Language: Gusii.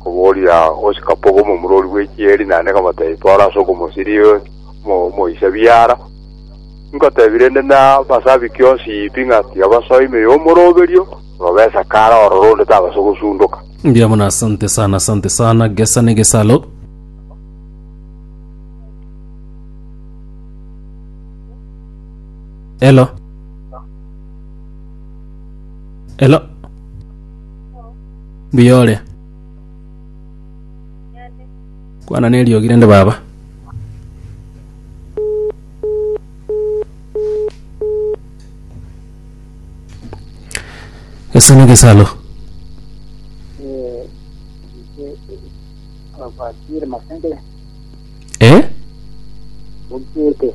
Okoboria gose kapogo omomurori bw'echieri naende kamotebia twara ase okomosiria omo- omoisa biara. Nkotebia rende nabasabi kionsi pi ng'a tiga basoe ime y'omoroberio, robe esakara ororo onde tabaso gosundoka. Mbuya mono asante sana asante sana gesa ne gesalo elo elo Mbuya ore. Kwana neriogi rende baba. Ese negesalo. Eh? Okiete.